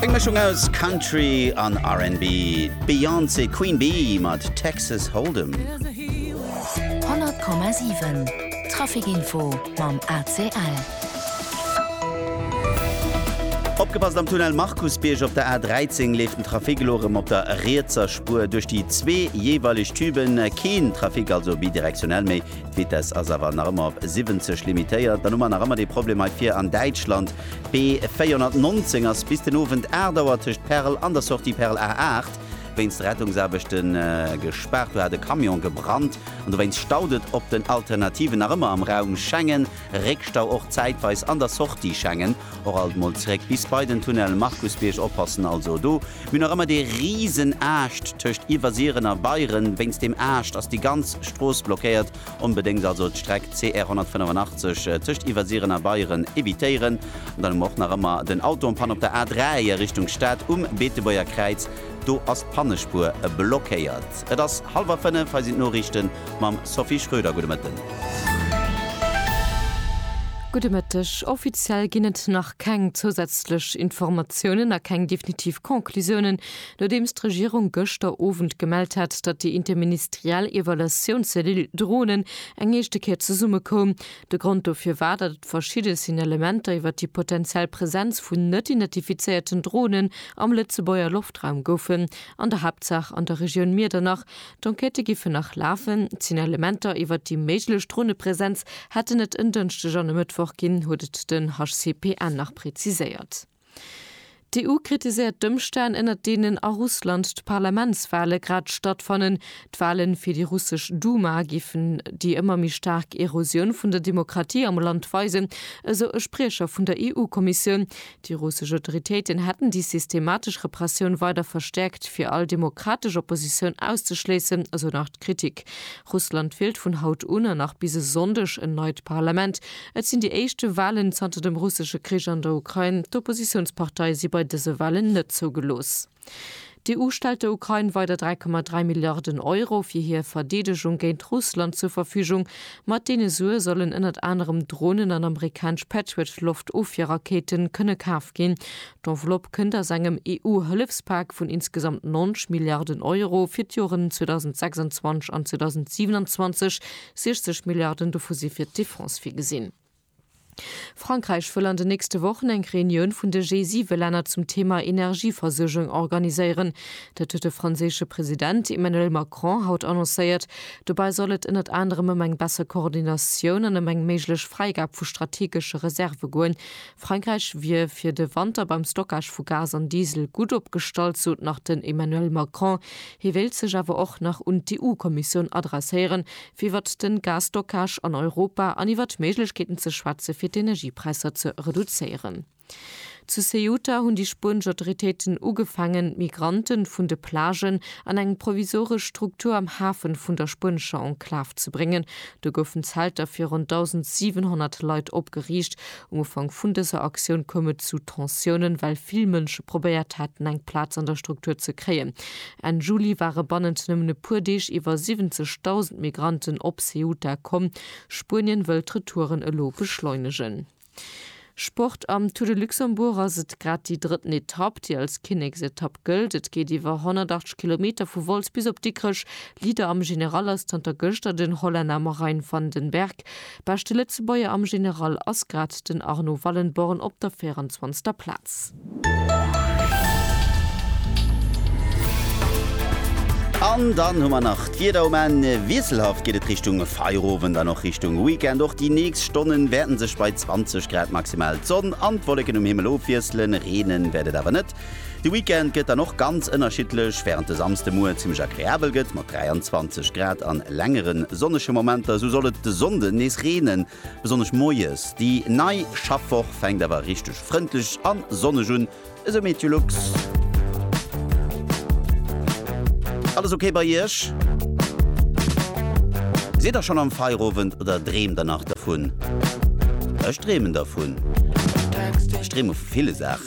Eng Mëschung aus Country an RnB, d'Beyoncé Queen Bee mat Texas Hold'em. 100,7 Traficinfo mam ACL. Opgepasst am Tunnel Markusbierg, op der A13 leeft den Trafic elo erëm op der rietser Spuer duerch déi zwee jeeweileg Tüben. Keen Trafic also bidirektionell méi. D'Vitess ass awer nach ëmmer op 70 limitéiert. Dann hu mer nach ëmmer dee Problem hei vir an Däitschland. D'B 419 ass bis den Owend 8 Auer tëscht Perl an der Sortie Perl A 8 wéinst Rettungsaarbechte gespaart. Do hat e Camion gebrannt an dowéinst staut et op den Alternativen nach ëmmer am Raum Schengen. Réckstau och zäitweis an der Sortie Schengen. Och alt mol zeréck bis bei den Tunnel Markusbierg, oppassen also do, mir nach ëmmer dee riesen Aascht tëscht Iwwersiren a Beieren, wéinst deem Aascht ass déi ganz Strooss blockéiert, onbedéngt also d'Streck CR 185 tëscht Iwwersiren a Beieren evitéieren. An dann hu mer och nach ëmmer den Auto en Panne op der A3 a Richtung Stad um Beetebuerger Kräiz, do ass d'Pannespuer blockéiert. Et ass hallwer 5, hei sinn d'Noriichten mam Sophie Schröder. Gudde Mëtten. Gudde Mëtteg. Offiziell ginn et nach keng zousätzlech Informatiounen a keng definitiv Conclusiounen, nodeems d'Regierung gëschter Owend gemellt hat, datt déi interministeriell Evaluatiounscellule Dronen eng éischte Kéier zesummekoum. De Grond dofir war, datt et verschidde Signalementer iwwer déi potenziell Presenz vun net identifizéierten Dronen am Lëtzebuerger Loftraum goufen. an der Haaptsaach an der Regioun Miedernach. D'Enquêtë giffen nach lafen. D'Signalementer iwwert déi méiglech Dronepresenz hätten et en Dënschdeg an e Mëttwoch ginn, huet et den HCPN nach preziséiert. D'EU kritiséiert d'Ëmstänn, ënner deenen a Russland d'Parlamentswale grad stattfannen. D'Wale fir déi russesch Duma géifen déi ëmmer méi staark Erosioun vun der Demokratie am Land weisen, esou e Spriecher vun der EU-Kommissioun. Déi russesch Autoritéiten hätten déi systematesch Repressioun weider verstäerkt, fir all demokratesch Oppositioun auszeschléissen, esou nach d'Kritik. Russland wielt vun haut un an nach bis e Sonndeg en neit Parlament. Et sinn déi éischte Walen zanter dem russesche Krich an der Ukrain. D'Oppositiounsparteie si bei dëse Walen net zougelooss. D'EU stellt der Ukrain weider 3,3 Milliarden Euro fir hir Verdeedegung géint Russland zur Verfügung. Mat deene Sue sollen ënnert anerem Dronen an amerikanesch Patriot-Loftofwierrakéite kënne kaf ginn. D'Enveloppe kënnt aus engem EU-Hëllefspak vun insgesamt 90 Milliarden Euro fir d'Joren 2026 an 2027, 60 Milliarden dovu si fir d'Defense virgesinn. Frankräich wëll an den nächste Wochen eng Reunioun vun de G7-Länner zum Thema Energieversuergung organiséieren. Dat huet de franséische President Emmanuel Macron haut annoncéiert. Dobäi soll et ënnert anerem ëm eng besser Koordinatioun an ëm eng méiglech Fräigab vu strategesche Reserve goen. Frankräich wier fir de Wanter beim Stockage vu Gas an Diesel gutt opgestallt, sot nach den Emmanuel Macron. Hie wéilt sech awer och nach un d'EU-Kommissioun adresséieren, fir iwwert den Gasstockage an Europa an iwwert Méiglechkeeten ze schwätzen, fir d'Energiepräisser ze reduzéieren. Zu Ceuta hunn déi spuenesch Autoritéiten ugefaangen, d'Migranten vun de Plagen an eng provisoresch Struktur am Hafen vun der spuenescher Enklav ze bréngen. Do goufen Zelter fir ronn 1.700 Leit opgeriicht, Um Ufank vun dëser Aktioun koum et zu Tensiounen, well vill Mënsche probéiert haten, eng Plaz an der Struktur ze kréien. Enn Juli ware bannent nëmmen e puer Deeg iwwer 70.000 Migranten op Ceuta komm. Spuenien wëll d'Retouren elo beschleunegen. Sport, Am Tour de Luxembourg ass et grad déi drëtten Etapp, déi als Kinneksetapp gëllt. Et geet iwwer 180 Kilometer vu Wolz bis op Dikrech. Leader am General ass zanter gëschter den Hollänner Marijn van den Berg. Beschte Lëtzebuerger am General ass grad den Arnaud Wallenborn op der 24. Plaz. An dann hu mer nach d'Wieder um Enn. Wiesselhaft geet et Richtung Feierowend an och Richtung Weekend. Och déi nächst Stonne wäerte sech bei 20 Grad maximal d'Sonn an d'Wolleken um Himmel ofwiesselen. Reenen wäert et awer net. De Weekend gëtt dann och ganz ënnerschiddlech, wärend de Samsdemoie zimmlech agreabel gëtt mat 23 Grad a längere sonnege Momenter, esou soll et de Sonnde nees reenen, besonnesch moies. Déi nei Schaffwoch fänkt awer richteg frëndlech a sonneg un, esou Meteolux. Alles ok bei Iech? Sidd der schonn am Feierowend oder dreemt der nach dervun? Ech dreemen dervun. Ech dreeme vu ville Saachen.